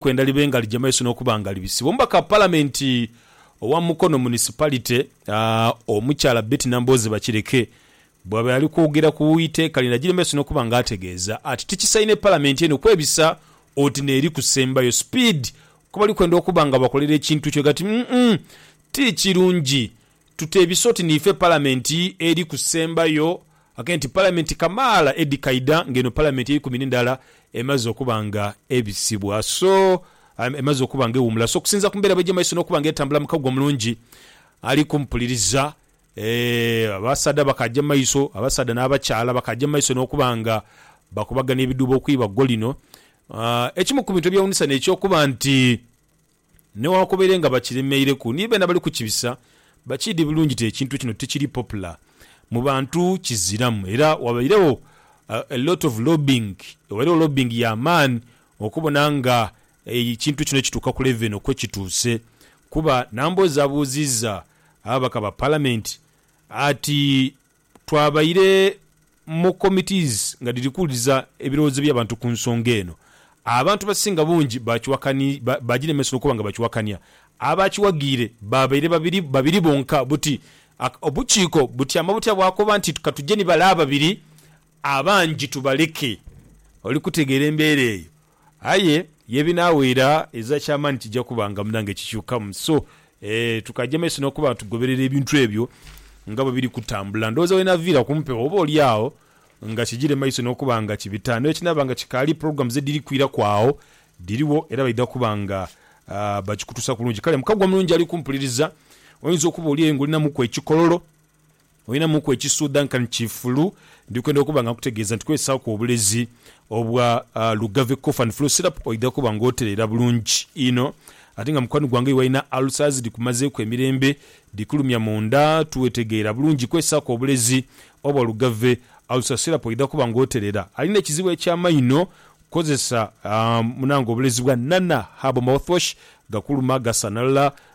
kwenda libe nga lija maiso n'okuba nga libisibwa. Omubaka wa Palamenti owa Mukono Municipality, Omukyala Betty Nambooze Bakireke bwabaire ali kwogera ku iteeka lino agire maiso n'okuba nga ategeeza ati tikisaine Palamenti eno kwebisa oti n'eri kusembayo speed ku bali kwenda okuba nga bakolera ekintu kyo ati umm ti kirungi Tuteebisa oti niife Palamenti eri kusembayo ate nti Palamenti kamaala edhikaidha nga eno Palamenti eikumi n'endala emaze okuba nga ebisibwa so emaze okuba nga ewuumula so okusinziira ku mbeera bw'eja mu maiso n'okuba nga etambula mu kaguwa omulungi ali kumupuliriza abasaadha bakaaja mu maiso abasaadha n'abakyala bakaaja mu maiso n'okuba nga bakubagania ebidhuubo okwibaggo lino. Ekimu ku bintu ebyewuunisa n'eky'okuba nti. Newankubere nga bakiremeireku ni beena bali kukibisa bakiidhi bulungi nti ekintu kino tikiri popular mu bantu kiziramu era wabairegho a lot of lobbying wabairegho lobbying ya maani okubona nga ekintu kino kituuka ku level eno kwekituuse kuba Nambooze abuuziiza ababaka ba Palamenti ati Twabaire mu committees nga dhiri kuwuliriza ebirowoozo by'abantu ku nsonga eno. Abantu abasinga bungi baaginemesa okuba nga bakiwakania. Abaakiwaghiire baabaire babiri babiri bonka buti obukiiko butyama butya bwakoba nti ka tuje ni bale ababiri abangi tubaleke. Oli kutegeera embeera eyo? Aye yebinaawaira eza kyamaani kija kuba nga munange kikyukamu. So ee tukaja maiso nokuba nga tugoberera ebintu ebyo nga bwebiri kutambula. Ndowooza wenaviira kumpewo oba olyagho nga kijire maiso nokuba nga kibita. Newekinaaba nga kikaali programs ediri kwiraku agho dirigho era baidha kuba nga bakikutuusa kulungi. Kale mukagwa mulungi ali kumpuliriza oyinza okuba oli eyo nga olinamuku ekikololo. Olinamuku ekisuudha nkani kifulu? Ndi kwenda okuba nga nkutegeeza nti kozesaaku obulezi obwa Lugave Cough and Flu Syrup oidha kuba nga otereera bulungi inho. Ate nga mukwano gwange oyo alina ulcers dhikumazeeku emirembe, dhikulumya mu nda, tiwetegeera bulungi, kozesaaku obulezi obwa Lugave Ulcer Syrup oidha kuba nga otereera. Alina ekizibu eky'amaino? Kozesa munange obulezi bwa Nana Herbal Mouthwash, gakuluma, gasanalala,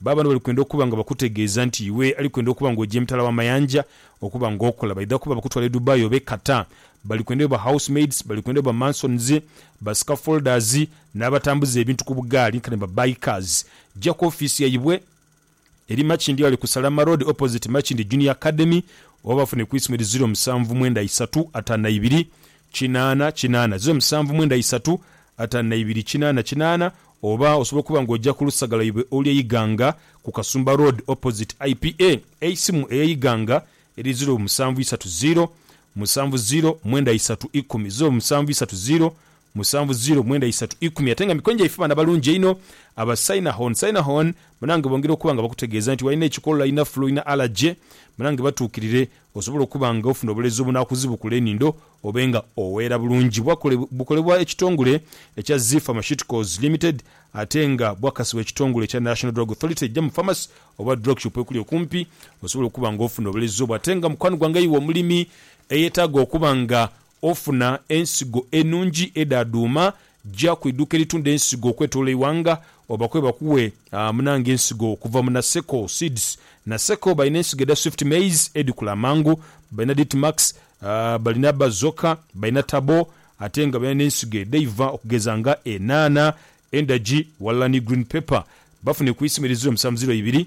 Ba bantu bali kwenda okuba nga bakutegeeza nti iwe ali kwenda okuba nga oja emitala w'amayanja okuba nga okola. Baidha kuba bakutwala e Dubai oba e Qatar. Bali kwenda obe ba housemaids, bali kwenda obe ba masons, ba scaffolders, n'abatambuza ebintu ku bugaali nkani ba bikers. Ja ku ofiisi yaibwe eri Makindye Ghale ku Salama Road opposite Makindye Junior Academy oba bafune ku isimu eri ziro musanvu mwenda isatu ataanu na ibiri kinaana kinaana, ziro musanvu mwenda isatu ataanu na ibiri kinaana kinaana, Oba osobola okuba nga oja ku lusaga lwaibwe olw'e Iganga ku Kasumba Road opposite IPA. Eisimu ey'e Iganga eri ziro musanvu isatu ziro, musanvu ziro mwenda isatu ikumi, ziro musanvu isatu ziro, musanvu ziro mwenda isatu ikumi. Ate nga mikwano gyaife baana balungi einho aba Synahon. Synahon banange bongera okuba nga bakutegeeza nti walina ekikolo, olina flu, olina allergy banange batuukirire Osobola okuba nga ofuna obulezi obunakuzibukula enindo obe nga oweera bulungi. Bukolebwa ekitongole ekya Zee Pharmaceuticals Limited ate nga bwakasibwa ekitongole ekya National Drug Authority eija mu pharmacy oba drug shop ekuli okumpi. Osobola okuba nga ofuna obulezi obwo ate nga mukwano gwange iwe omulimi eyetaaga okuba nga ofuna ensigo enungi edhadhuuma, ja ku iduuka eritunda ensigo okwetolola eighanga obakobe bakuwe munange ensigo okuva mu Naseko Seeds. Naseko balina ensigo edha Swift Maize edhikula amangu, balina Ditmax, balina Bazoka, balina Taboo ate nga balina n'ensigo edheiva okugeza nga enhaanha, endagi ghalala ni green pepper. Bafune ku isimu eri ziro musanvu ziro ibiri.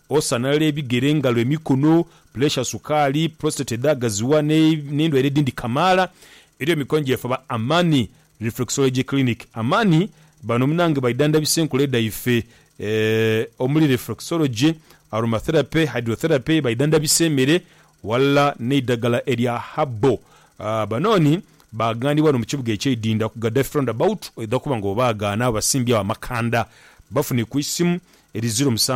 Osanhalaala ebigere, engalo, emikono, puleesha, sukaali, prostate edhaagaziwa n'endwaire edhindi kamaala. Eriyo mikono gyefaba Amani Reflexology Clinic. Amani bano munange baidhandhabisa enkula dhaife omuli reflexology, aromatherapy, hydrotherapy, baidhandhabisa emere ghalala n'eidhagala erya herbal. Banooni baaghandiibwa ghano mu kibuga eky'eidhindha ku Gaddafi Roundabout oidha kuba nga obaagaana awo basimbye agho amakanda. Bafune ku isimu eri ziro musanvu.